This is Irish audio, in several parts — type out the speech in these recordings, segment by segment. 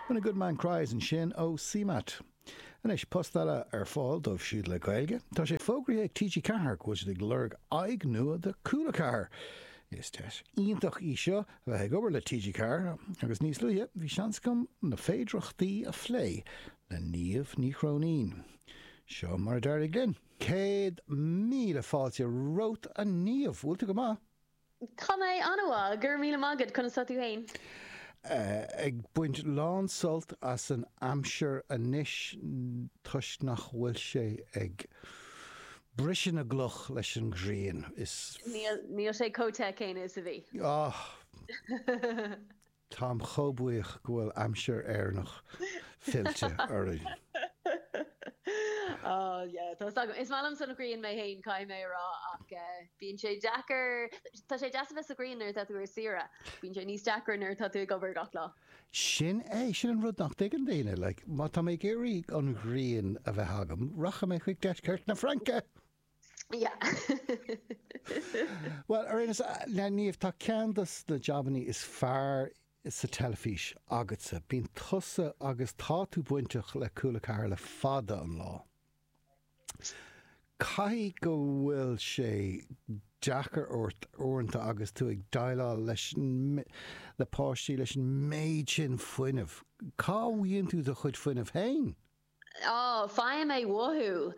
When a good man cries ansin ó CMAT. Anois, post eile ar fáil dóibh siúd le Gaeilge. Tá sé fógraithe ag TG4 go bhfuil siad ag lorg aghaidh nua do Cúla4. Is deis iontach í seo a bheith ag obair le TG4 agus níos luaithe bhí seans agam na féidireachtaí a phlé le Niamh Ní Chróinín. Seo mar a d'éirigh linn. Céad míle fáilte romhat a Niamh! Bhfuil tú go maith? Tá mé an-mhaith, go raibh míle maith agat, conas tá tú féin? Ag baint lán-sult as an aimsir anois toisc nach bhfuil sé ag briseadh na gcloch leis an ghrian. Níl sé chomh te céanna is a bhí. Táim chomh buíoch go bhfuil aimsir Éireannach fillte orainn. Oh yeah, tá 's agam. Is maith liom san ghrian mé fhéin, caithfidh mé a rá, ach bíonn sé deacair, tá sé deas a bheith sa ghrian nuair atá tú ar saoire, bíonn sé níos deacra nuair atá tú ag obair gach lá. Sin é, sin an rud nach dtuigeann daoine, like, má tá mé ag iarraidh an ghrian a bheith agam, rachaidh mé chuig deisceart na Fraince! Well ar aon nós, a Niamh, tá ceann de na jabannaí is fearr sa teilifís agatsa. Bíonn tusa agus tá tú bainteach le Cúla Ceathair le fada an lá. Caithfidh go bhfuil sé deacair ort uaireanta agus tú ag déileáil le le páistí leis an méid sin fuinnimh. Cá bhfaigheann tú do chuid fuinnimh féin? Ó, faighim é uathu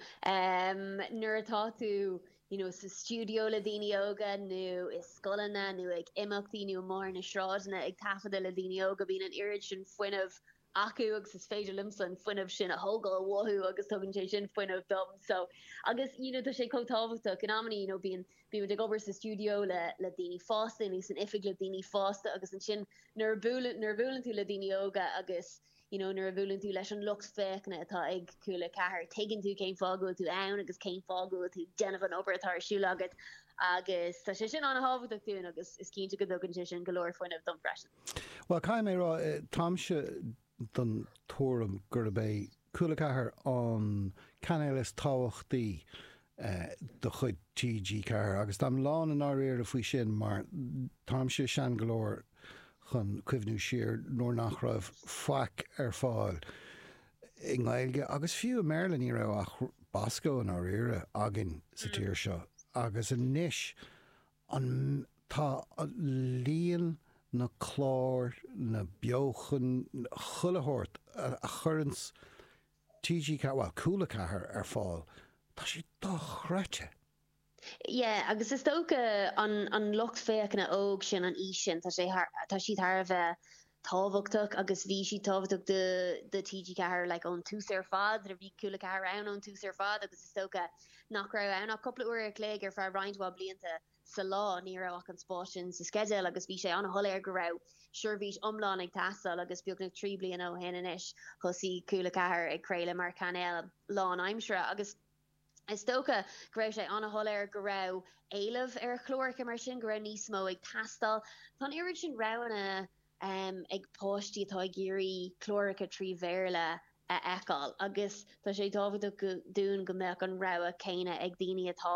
nuair atá tú you know sa stiúideo le daoine óga nó i scoileanna nó ag imeachtaí nó amuigh ar na sráideanna ag taifeadadh le daoine óga, bíonn an oiread sin fuinnimh acu agus is féidir liomsa an fuinneamh sin a thógáil uathu agus tugann sé sin fuinneamh dom so agus you know tá sé chomh tábhachtach in amannaí you know bíonn bíonn muid ag obair sa stiúideo le le daoine fásta nó san oifig le daoine fásta agus ansin nuair a buaileann nuair a bhuaileann tú le daoine óga agus You know, nuair a bhuaileann tú leis an lucht féachana atá ag Cúla Ceathair, tuigeann tú cén fáth go bhfuil tú ann agus cén fáth go bhfuil tú ag déanamh an obair atá ar siúl agat, agus tá sé sin an-tábhachtach dúinn agus is cinnte go dtugann sé sin go leor fuinnimh dom freisin. Bhuel, caithfidh mé a rá, táimse den tuairim gurb é Cúla Ceathair an cainéal is tábhachtaí de chuid TG4, agus táim lándáiríre faoi sin mar táimse sean go leor chun cuimhniú siar nuair nach raibh faic ar fáil i nGaeilge agus fiú i mBéarla, ní raibh ach Bosco, i ndáiríre, againn sa tír seo agus anois an tá líon na gclár, na beochan, chuile shórt a chuireann TG4, Cúla 4 ar fáil. Tá sé dochreidte! Yeah, agus is dócha an an lucht féachana óg sin, an aois sin, tá sé thar, tá siad thar a bheith tábhachtach agus bhí siad tábhachtach do do TG4 like ón tús ar fad, bhí Cúla 4 ann ón tús ar fad agus is dócha nach raibh ann ach cúpla uair a chloig ar feadh roinnt mhaith blianta. sa lá, ní raibh ach an spás sin sa sceideal agus bhí sé an-shoiléir go raibh seirbhís iomlán ag teastáil agus beagnach trí bliana ó shin anois, thosaigh Cúla 4 ag craoladh mar chainéal lánaimseartha agus is dócha go raibh sé an-shoiléir go raibh éileamh ar chláracha mar sin, go raibh níos mó ag teastáil. Tá an oiread sin roghanna. um ag páistí atá ag iarraidh cláracha trí Bhéarla a fheiceáil agus tá sé tábhachtach dúinn go mbeadh an rogha céanna ag daoine atá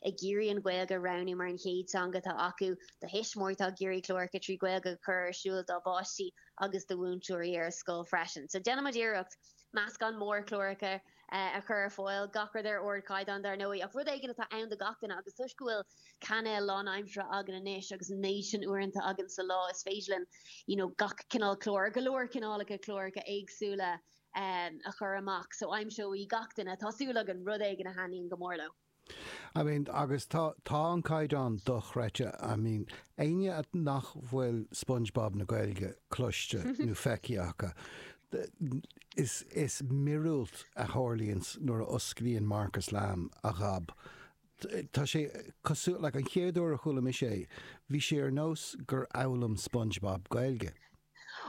ag iarraidh an Ghaeilge a roghnú mar an chéad teanga atá acu, do thuismitheoirí atá ag iarraidh cláracha trí Ghaeilge a chur ar siúl dá bpáistí agus do mhúinteoirí ar scoil freisin. So déanaimid iarracht meascán mór cláracha a. a chur ar fáil, gach rud ar ardchaighdeán, dar ndóigh, ach rud éigin atá ann do gach duine, agus toisc go bhfuil cainéal lánaimseartha againn anois, agus an méid sin uaireanta againn sa lá, is féidir linn you know gach cineál clár, or go leor cineálacha cláracha éagsúla, a chur amach, so aimseoidh gach duine, tá súil againn, rud éigin a thaitníonn go mór leo. I mean, agus tá, tá an caighdeán dochreidte. I mean, éinne a, nach bhfuil Spongebob na Gaeilge cloiste nó feicthe acu, is, is miorúilt a tharlaíonns nuair a osclaíonn Marcus Lamb a ghob. Tá sé cosúil, like an chéad uair a chuala mise é, bhí sé ar nós gur fhoghlaim Spongebob Gaeilge.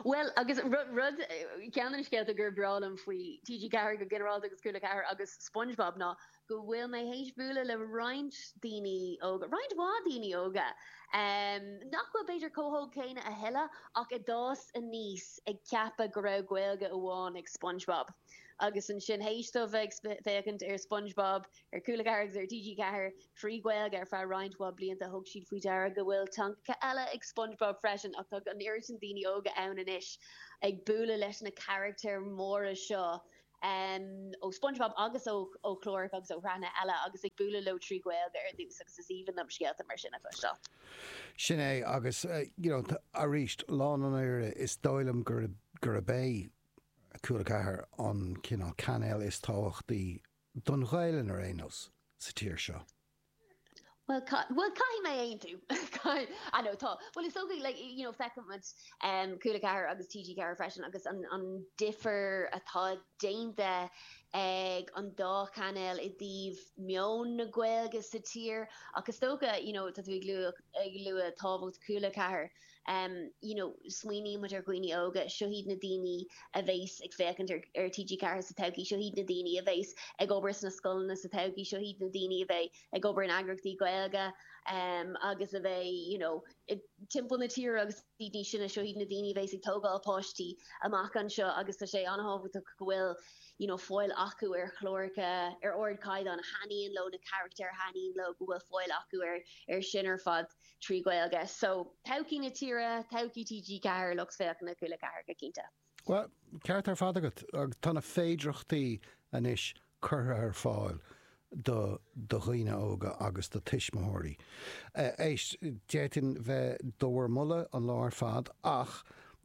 Bhuel, agus rud, ceann de na scéalta gur breá liom faoi TG4 go ginearálta agus Cúla 4 agus Spongebob ná go bhfuil mé théis bualadh le roinnt daoine óga, roinnt mhaith daoine óga, nach bhfuil b'fhéidir chomh hóg céanna a thuilleadh ach a d'fhás aníos ag ceapadh go raibh Gaeilge amháin ag Spongebob. Agus ansin théis dóibh bheith ag féachaint ar Spongebob, Ar Cúla 4 agus ar TG4 trí Ghaeilge ar feadh roinnt mhaith blianta, thug siad faoi deara go bhfuil teangacha eile ag Spongebob freisin, ach tá an oiread sin daoine óga ann anois ag bualadh leis na carachtair mhóra seo ó Spongebob agus ó chláracha agus ó shraitheanna eile agus ag bualadh leo trí Ghaeilge ar dtús agus is aoibhinn liom scéalta mar sin a chloisteáil. Sin é, agus you know arís, lá an lúbaire, is dóigh liom gurb é Cúla 4 an cineál cainéal is tábhachtaí don Ghaelainn ar aon nós, sa tír seo. Bhuel, bhuel, caithfidh mé aontú. I know, tá. Bhuel, is dócha, like, you know, feiceann muid um, Cúla 4 agus TG 4 freisin agus an, an difear atá déanta ag an dá chainéal i dtaobh meon na Gaeilge sa tír. Ach is dócha, you know, tá tú ag lua, ag lua tábhacht Cúla 4. you know smaoiníonn muid ar dhaoine óga, seo iad na daoine a bheas ag féachaint ar ar TG4 sa todhchaí, seo iad na daoine a bheas ag obair sna scoileanna sa todhchaí, seo iad na daoine a bheidh ag obair in eagraíochtaí Gaeilge um agus a bheidh you know timpeall na tíre agus iad níos sine, seo iad na daoine a bheas ag tógáil páistí amach anseo agus tá sé an-tábhachtach go bhfuil you know fáil acu ar chláracha ar ardchaighdeán a thaitníonn leo na carachtair a thaitníonn leo, go bhfuil fáil acu ar ar sin ar fad. trí Ghaeilge. So, todhchaí na tíre, todhchaí TG4, lucht féachana Cúla 4 go cinnte. Bhuel, ceart ar fad agat. Tá na féidireachtaí anois curtha ar fáil do dhaoine óga agus do tuismitheoirí. Éist, d'fhéadfainn bheith do bhur moladh an lá ar fad ach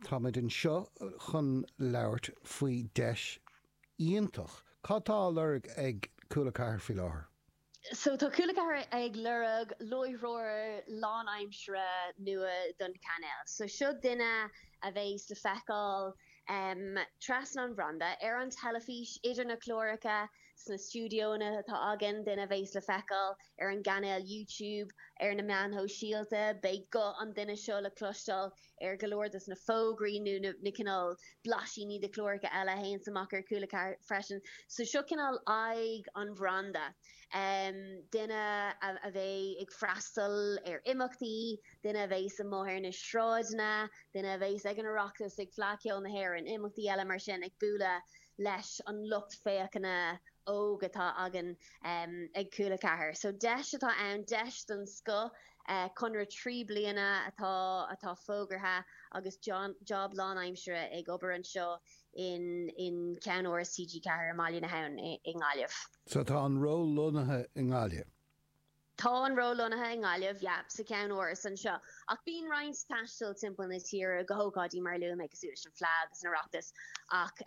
tá muid anseo chun labhairt faoi deis iontach. Cad tá á lorg ag Cúla 4 faoi láthair? So tá Cúla 4 ag lorg láithreoir lánaimseartha nua don chainéal. So seo duine a bheas le feiceáil trasna an bhranda ar an teilifís, idir na cláracha, sna stiúideonna atá againn, duine a bheas le feiceáil ar an gcainéal YouTube, ar na meáin shóisialta. Beidh guth an duine seo le cloisteáil ar go leor de na fógraí nó na cineál blaisíní de chláracha eile a théanns amach ar Cúla 4 freisin. So seo cineál aghaidh an bhranda, duine a bheidh ag freastal ar imeachtaí, duine a bheas amuigh ar na sráideanna, duine a bheas ag an Oireachtas, ag Fleadh Cheoil na hÉireann, imeachtaí eile mar sin, ag bualadh leis an lucht féachana óg atá againn ag Cúla 4 so deis atá ann, deis den scoth, conradh trí bliana atá atá fógartha agus job lánaimseartha ag obair anseo in in Ceann-Áras TG4 i mBaile na hAbhann i nGaillimh. So tá an ról lonnaithe i nGaillimh. Tá an ról lonnaithe i nGaillimh, yep, sa cheann-áras anseo, ach bíonn roinnt taistil timpeall na tíre go hócáidí mar a luaigh mé, cosúil leis an Fleadh agus an Oireachtas, ach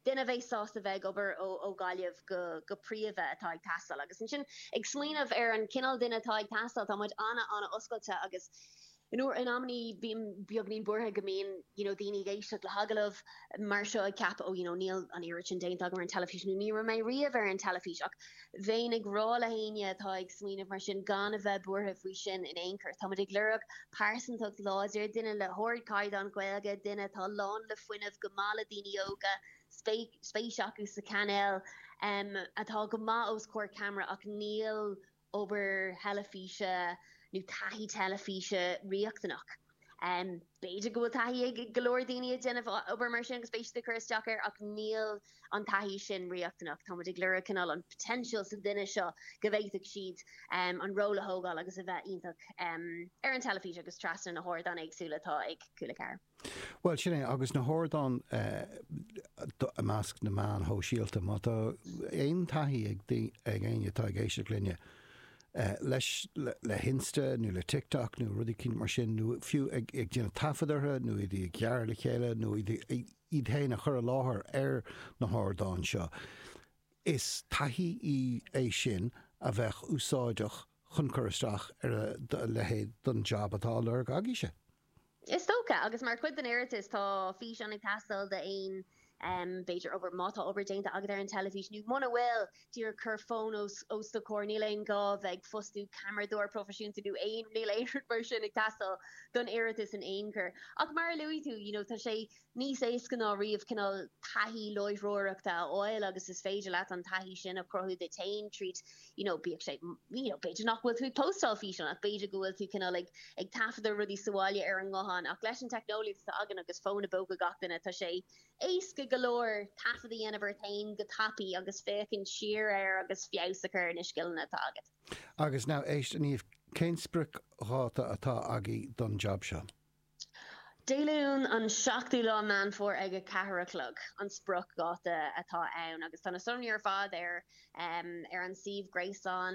duine a bheidh sásta bheith ag obair ó Ghaillimh go príomha atá ag teastáil. Agus ansin, ag smaoineamh ar an gcineál duine atá ag teastáil, tá muid ana-ana-oscailte agus, You know, in amannaí, bím beagainín buartha go mbíonn you know daoine ag éisteacht le hagallamh mar seo ag ceapadh oh you know níl an oiread sin déanta agam ar an teilifís nó ní raibh mé riamh ar an teilifís ach bheinn ag rá le héinne atá ag smaoineamh mar sin gan a bheith buartha faoi sin in aon chor. Táimid ag lorg pearsantacht láidir, duine le hardchaighdeán Gaeilge, duine atá lán le fuinneamh, go maith le daoine óga, spéis acu sa chainéal, atá go maith os comhair ceamara ach níl obair theilifíse nó taithí teilifíse riachtanach. B'fhéidir go bhfuil taithí ag go leor daoine ag déanamh obair mar sin agus beidh siad ag cur isteach air ach níl an taithí sin riachtanach. Táimid ag lorg cineál an potential sa duine seo go bhféadfadh siad an ról a thógáil agus a bheith iontach ar an teilifís agus trasna na hardáin éagsúla atá ag Cúla 4. Bhuel, sin é, agus na hardáin i measc na meáin shóisialta, má tá aon taithí ag éinne atá ag éisteacht linne, leis, le hInsta nó le TikTok nó rudaí mar sin, nó fiú ag déanamh taifead orthu nó iad ag gearradh le chéile nó iad féin a chur i láthair ar na hardáin seo, is taithí í é sin a bheadh úsáideach chun cur isteach ar a leithéid de jab atá á lorg agaibhse. Is ea go díreach, agus mar chuid den iarratas tá físeán ag teastáil d'aon, b'fhéidir, obair, má tá obair déanta agat ar an teilifís, nó muna bhfuil, díreach cuir fón os do chomhair, níl aon ghá bheith ag fostú ceamaradóir proifisiúnta nó aon, níl aon rud mar sin ag teastáil don iarratas in aon chor. Ach mar a luaigh tú, you know, tá sé. níos éasca ná riamh cineál taithí láithreoireachta a fháil agus is féidir leat an taithí sin a chruthú duit féin tríd you know bíodh sé you know b'fhéidir nach bhfuil tú ag postáil físeán ach b'fhéidir go bhfuil tú cineál ag ag taifeadadh rudaí sa bhaile ar an nguthán ach leis an technology atá againn agus fón i bpóca gach duine tá sé éasca go leor taifead a dhéanamh ort féin go tapaidh agus féachaint siar air agus feabhas a chur ar na scileanna atá agat. Agus now éist Niamh, cén spriocdháta atá agaibh don job seo? Dé Luain an 7ú lá Meán Fómhair ag a ceathair a chlog an spriocdháta atá ann agus tá na sonraí ar fad ar an suíomh gréasáin.